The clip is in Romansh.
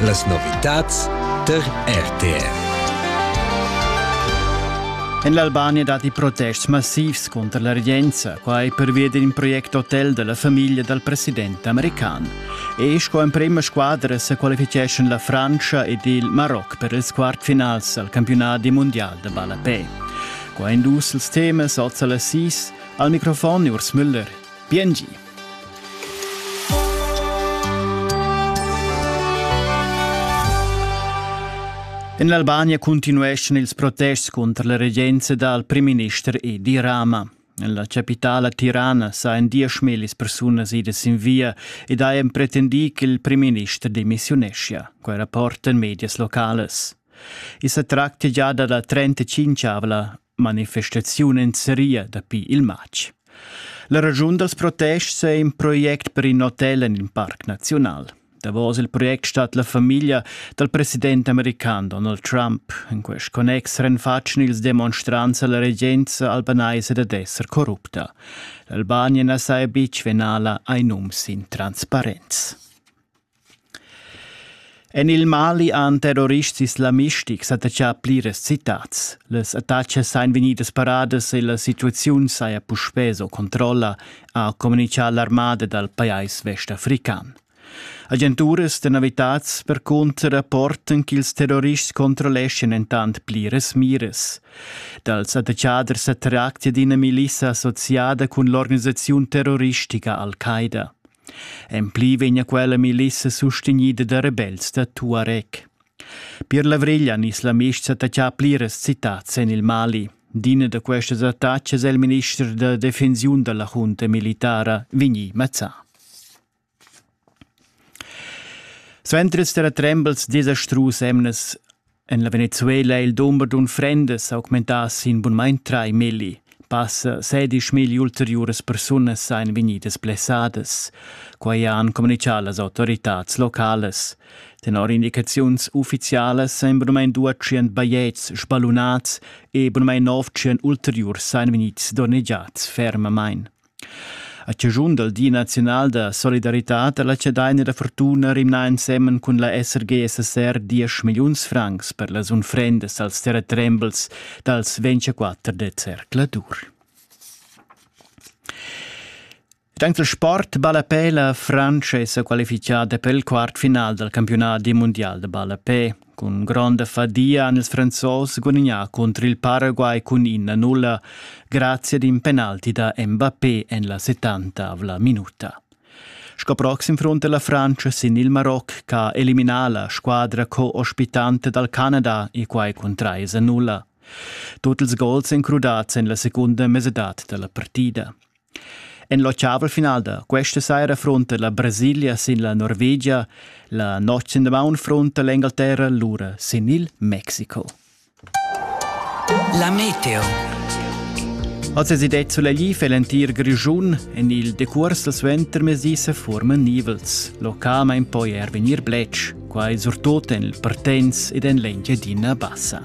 Las novitads tar RTR. En l'Albania datti protests massivs contro la regenza, quai pervia d'un project hotel della famiglia dal president american. E sco emprima squadra se qualificeschan la Francia ed il Maroc per ils quartfinals al campionat mondial de ballapè. Qua in dus els temas oz alla sis, al microfon Urs Müller. Biengi. En l'Albania cuntinueschan ils protests cunter la regenza dal primminister Edi Rama. En la capitala Tirana sajan dieschmillis persunas idas sin via ed hajan pretendì ch'il primminister demissiuneschia, quai rapportan medias locales. I sa tractia gia da la 35-avla manifestaziun en seria dapi il matg. La ragiun dals protests è in project per in hotel en il parc naziunal. Davos il project stat la famiglia dal president american Donald Trump. In quest connex renfatschen ils demonstrants alla regenza albanaisa dad esser corrupta. L'Albania na sa beach venala ai nums in transparenz. En il Mali han terrorists islamistic s'attaccà pliras citads. Las attacas ein vegnidas paradas e la situaziun saja puspè sco controlla, ha communitgà l'armada dal pajais westafrican. Agenturas da novitads percunter rapportan ch'ils terrorists controlleschan entant pliras miras. Dals attachaders sa tractia d'ina milissa associada cun l'organisaziun terroristica Al-Qaida. En pli vegna quella milissa sustegnida da rebels da Tuareg. Per l'avriglia nis la mista taccà pliras citats en il Mali. D'ina da questas attacas è il minister da defensiun della junta militara Vigni Mazzà. Suenter der Trembles desastrus emnes En la Venezuela è il dumber d'unfrendas augmentà sin bunmain trai milli. Passa sedisch mil ulteriuras persunas ein vegnidas blessadas. Quai han communichà las autoritads localas. Tenor indicaziuns uffizialas ein bunmain 200 bajetgs spalunats e bunmain 900 ulteriurs ein vegnids donnegiads fermamain. A chaschun dal Di naziunal da solidaritad ha la Chadaina da fortuna rimnà ensemen cun la SRG-SSR diesch milliuns francs per las unfrendas als terratrembels dals 24 de zercladur. Dank del sport ballapè la Francia è qualifichada per il quart final dal campionat mundial de ballapè. Cun gronda fadia han ils Franzos gudagnà cunter il Paraguay cun ina nulla grazia ad in penalti da Mbappé en la settantavla minuta. Sco proxim fronta la Francia sin il Maroc che elimina la squadra co-ospitante dal Canada e quai cun 3 a 0. Tut ils gols èn crudads en la secunda mesadad da la partida. En l'ottavel final da questa saira frunta la Brasilia sin la Norvegia, la notg in damaun frunta l'Engalterra lura sin il Mexiko. La meteo. Oz è det sulegli für l'entir Grischun. En il decurs dal suentermezdi se forman nivels. Localment poi er venir bletsch, quai surtut en il Partenz ed en l'Engiadina Bassa.